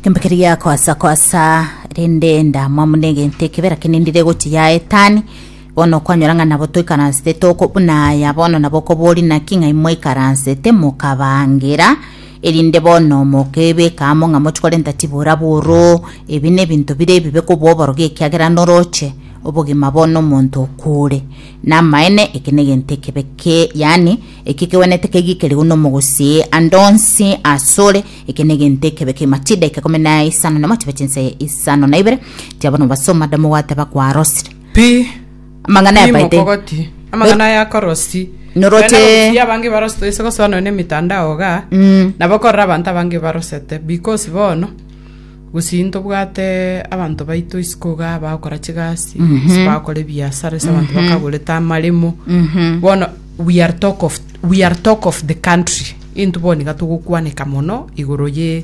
Embekeri ya kwasa kwasa rende ndamwamu negente kebera kinindire gochi ya etani bono kwanyora ng'a nabo toikaransete toko buna aya bono nabo kobori naki ng'a imoikaransete mokabangira erinde bono mokebeka amo ng'a mochi korenta tibora boro ebi nebinto bire ebibe kobo oborogi ekiagera noroche obogima bono omonto okure namaene eke negento ekebe ke yani Eki kegwenerete kegikerigwe nomogosi ande onsi asore, eke negento ekebe kimache edaika ikomi na isano na motiba chinsa isano na ibere, tiabona obasoma da mogwate bakwarosire. Pi, Amang'ana pi yabaete. mokogoti. Amang'ana aya akorosi. Noroche- Korende abagusia abange ibarose toise gosoa nonya na emitandao igaa, Mm. nabo korora abanto abange ibarosete, because bono, Gose intobwate abanto baito isiko iga abagokora chigasi, ase bagokora ebiasara, ase abanto bakagorete amaremo. Bono we are talk of, we are talk of the country. Intwe bono iga togokwaneka mono igoro ye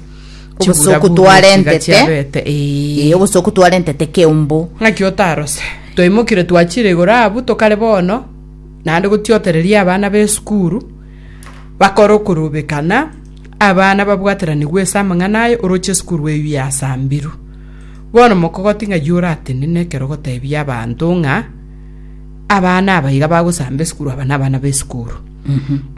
Obosoku twarentete. chiabete. Ee. Eh, obosoku twarentete keumbu. ng'aki otarose twaimokire twachire igoro abu tokare bono naende gotiotereria abana b'esukuru bakore okorobekana Abana babwataranigwe ase amang'ana aya oroche esukuru eyio yasambiru. Bono mokogoti ng'ai oratenene ekero gotebia abanto ng'a abana aba iga bagosamba esukuru aba nabana b'esukuru.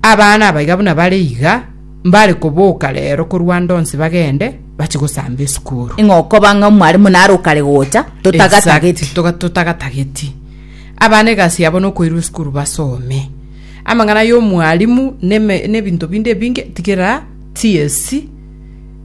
Abana aba iga buna bare iga mbare koboka rero korwa ande onsi bagende bache gosamba esukuru. Ing'o okoba ng'a omwaremo nare okare gocha totagatageti. Exact, toga- totagatageti abana egasi yabo nokoirwa esukuru basome Amang'ana y'omwalimu neme nebinto binde ebinge tigera TSC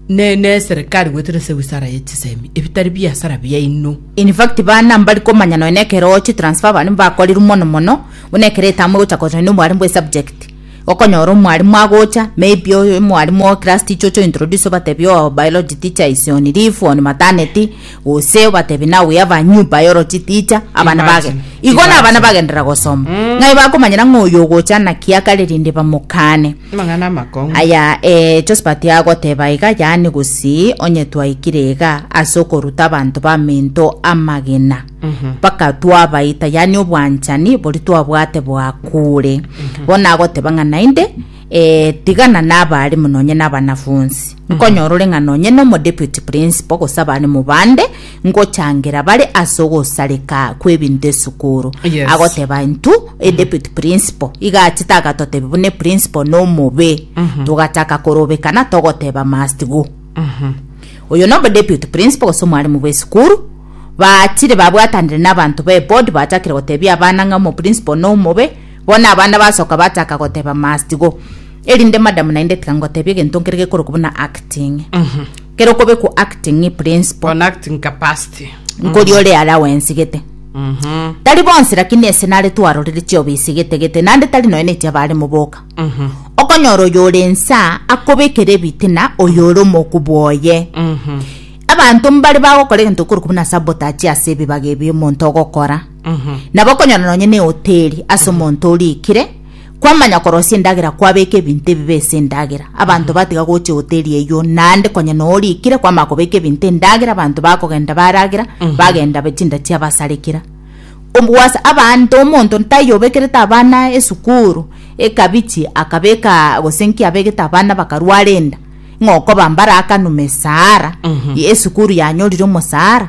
ne neserikari goetera ase wisara ye chisemi ebitari biasara biaino. In fact bana mbari komanya nonya ekero chi transfer abana mbakorirwe mono mono buna ekero etamu egocha kochorwa na omwalimu bwe subject okonyora omwalimu agocha maybe omwalimu o class teacher ocha o introduce obatebie oo biology teacher is on leave on maternity gose obatebie nawe yaba nyumba yorotiticha abana bage Imagine, igo na abana imagine. bagendera gosoma Mm. ng'ai bakomanyera ng'oyo ogocha naki akare rinde bamokane amang'ana amakong'u aya eh, josephat agoteba iga yaani gose onye twaikire iga ase okoruta abanto bamento amagena Mhm. mpaka twabaita yaani obwanchani bori twabwate bwakure bono agoteba ng'a naende Ee, tigana naba arimo nonye nabanafunsi, nkonyora ore ng'a nonye nomodeputy principal gose abarimo bande, ngochangera bare ase ogosareka kw'ebinto esukuru. Yes. Agoteba intu edeputy principal iga achete agatotebia buna eprincipal nomobe, togachaka korobekana togoteba must go. oyo nobo deputy principal gose omwarimu bw'esukuru bachire babwatanire n'abanto b'eboard bachakire gotebia abana ng'a omoprincipal nomobe Bono abana basoka bataka goteba must go, erinde madam naende tiga ngotebie egento nkere gekorokwa buna acting. Kero okobekwa acting principle, On acting capacity. nkori ore allowance gete. Tari bonsi lakini ase nare twarorire chiobisi gete gete, naende tari nonya nechi abare moboka. Okonyora oyo ore nsa akobekera ebitina oyo ore omoku bwoye. Abanto mbare bagokora egento gekorokwa buna sabotage ase ebibaga ebi omonto ogokora. Nabo okonyora nonye nehoteri ase omonto orikire, kwamanya korosia endagera kwabeka ebinto ebibe ase endagera. Abanto batiga gocha ehoteri eyio naende konya noo orikire kwamanya kobeka ebinto endagera abanto bakogenda baragera bagenda be- chinda chiabasarekera. Obo gwasa abanto omonto taiyo obekerete abana esukuru, ekabichi akabekaa gose nki abegete abana bakarwara enda, ng'okoba mbarakanwa mesara, esukuru yanyorire omosara,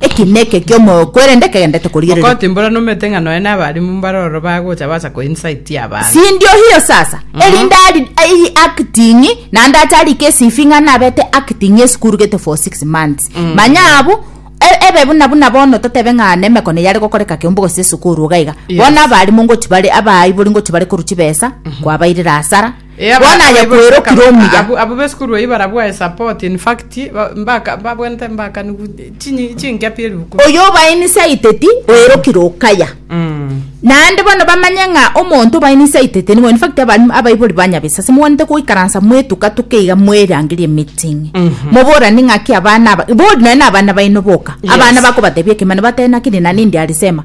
Eki neke eki'omoyo kwerende kegenderete korigereria. Okoti mbora nomete ng'a nonya nabalimu mbare oro bagocha baasa ko insight y'abaana. Sindio hiyo sasa? Erinde ari i acting naende ache ari ke CV ng'a nabete acting esukuru gete for six months. Manya abwo e- ebe buna buna bono totebe ng'a nemekono eyare gokoreka kiombe gose esukuru iga iga. Yes. Bono abalimu ngochia bare abaaibori ngochia bare korwa chibesa kwabairera asara. Bono aye kwerokire omuya. Abwo abwo b'esukuru eyio barabwae support in fact ba- mbaka babwente mbakani gu- chinyi- chinkia pi ebibuku Oyo obainisaiteti oerokire okaya. Mm. Naende bono bamanye ng'a omonto obainisaiteti nigo in fact abari- abaibori ba Nyabesa ase mobwanete goikaransa mwetuka tuka iga mwerangeria emeeting. Moborani ng'aki abana aba bori nonye na abana baino boka. Yes. Abana bakobatebia ekemana batebe naki rinani ndiarisema.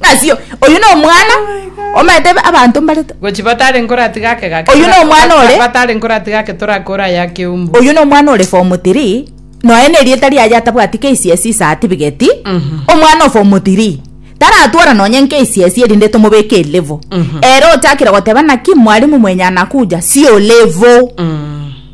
Ng'asio, oyio nomwana omanyete abanto mbarete. Gochi batare nkoratiga ake gake. Oyio nomwana ore. Batare nkoratiga ake torakore aya akeumbu. Oyio nomwana ore form three, noe nerieta riaye atabwati KCSE certificate, omwana o form three, taratwara nonye KCSE erinde tomobeke elevo. Ere ochakire goteba naki mwalimu mwenye anakuja, sio level.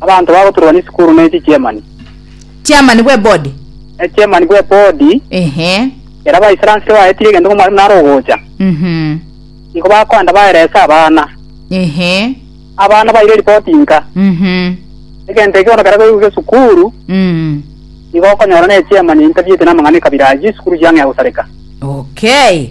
Abanto bagoturwania esukuru ne chichiemani. Chairman bw'ebodi. Echairman bw'ebodi. Ehe. Ere abaisaransire baetire egento ng'a omwarimu nare ogocha. Mhm. Nigo bakoenda baerese abana. Ehe. Abana baire eripoti nka. Mhm. Egento eke bono kera goigwa esukuru, Mhm. nigo okonyora na echairman einterviewete namang'ana ekabira ayio, esukuru chiang'ea gosareka. Okay.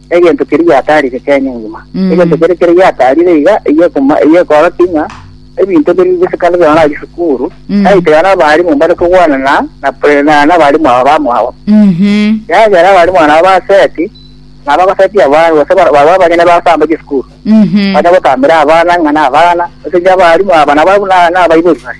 egento keria giataarire kenya engima. Mm. Egento keria keria giataarire iga eyio ekoma- eyio ekorokia ng'a ebinto biri gose kando buna barachie sukuru Mm. naitera n'abarimu mbare kogwana na na pre- na- n'abarimu aba bamwabo Mhm. yagera abarimu aba nabo baseti na bagosetia abana gose bar- barwa abanyene bagotamba chisukuru Mhm. bane gotambera abana ng'a na abana gose inche abarimu aba nabo buna nabaibori bare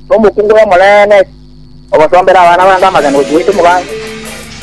Nomokungu oyomo ree neti, ogosombera abana bande amagena gochia goita omogaso.